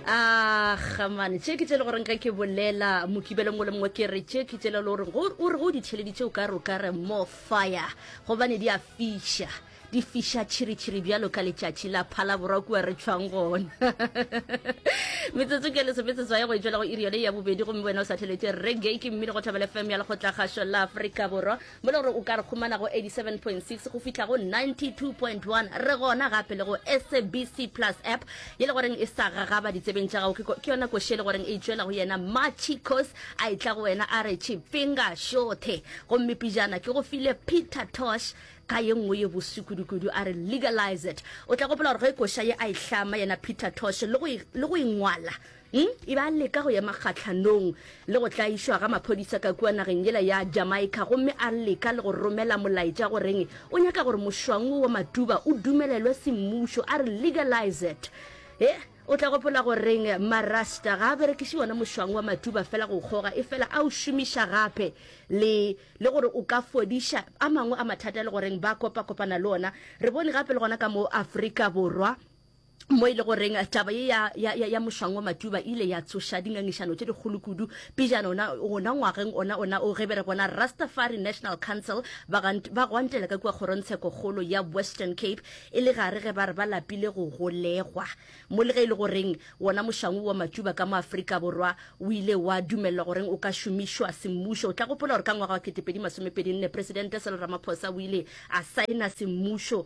a gamane tše ke tsele goreng ge ke bolela mokibeleng o le mongwe ke re tše ke tsele le gore o re go di theleditše o ka re o ka re more fire gobane di a fiša di fiša tšhiritšhiri bjalo ka letšatši la phalaborwa kua re tšhwang gona metsotso ke lesometsetso ya go etswela go iri yone ya bobedi gomme wena o sa theletše reggae ke mmino go thabela fm ya lekgotla kgašo la aforika borwa mo le gore o ka re humana go 87.6 go fihla go 92.1 re gona gape le go sabc plus app ye le goreng e sa gagaba ditsebeng tša gago ke yona koši e le goreng e tšwela go yena matšhi cos a e tla go wena a re tšhipinga šothe gomme pijana ke go file peter tosh ka ye nngwe ye boswi kudukudu a re legalize it o tla gopola gore ge koša ye a e hlama yena peter tosh le go ingwala Hm, e be a leka go ema kgahlanong le go tlaišwa ga maphodisa ka kua nageng yela ya Jamaica gomme a leka le go romela molaetša go reng o nyaka gore mošwang wo wa Matuba o dumelelwe semmušo, a re legalize it. He, o tla gopola go reng Marasta ga a berekiše wona mošwang wa Matuba fela go kgoga efela a o šomiša gape le le gore o ka fodiša a mangwe a mathata le go reng ba kopa-kopana le ona. Re bone gape le gona ka mo Afrika Borwa, mo e le goreng taba ye ya, ya, ya, ya mošwango matuba ile ya tsoša dingangišano tše dikgolo kudu pejana ona gona ngwageng ona ona o ge be re bona rastafari national council ba, gant, ba gwantela ka kua kgorongtsheko kgolo ya western cape e le gare ge ba re ba lapile go golegwa mo le ge e le goreng wona mošwango wa matuba ka mo afrika borwa o ile wa dumelelwa goreng o ka šomišwa semmušo o tla gopola gore ka ngwaga wa 2024 presidente selo ramaphosa o ile a saena semmušo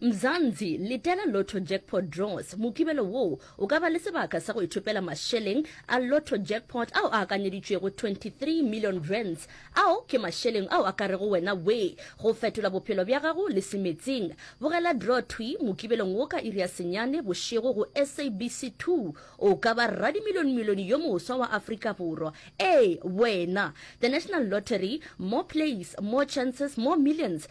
Mzansi, letela Lotto Jackpot Draws. Mokibelo woo o ka ba le sebaka sa go ithopela mašeleng a Lotto Jackpot ao a akanyeditšwego 23 million rands. Ao ke mašeleng ao a ka rego wena wee go fetola bophelo bja gago le se meetseng. Bogela draw thwi Mokibelong wo ka iri ya senyane bošego go SABC 2. O ka ba radimilionmilione yo moswa wa Afrika Borwa. Ee, wena! The National Lottery, More plays, more chances, more millions.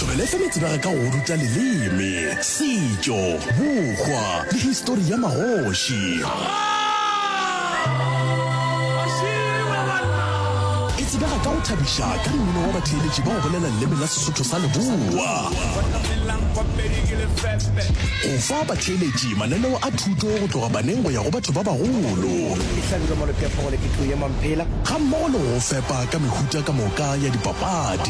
Tšweleletša metsebega ka go ruta leleme, setšo, bokgwa le histori ya magoši. E tsebega ka go thabiša ka dimino wa batheeletši ba go bolela leleme la Sesotho sa Leboa, go fa batheeletši mananeo a thuto go tloga baneng go ya go batho ba bagolo, gammogo le go go fepa ka mehuta ka moka ya dipapadi.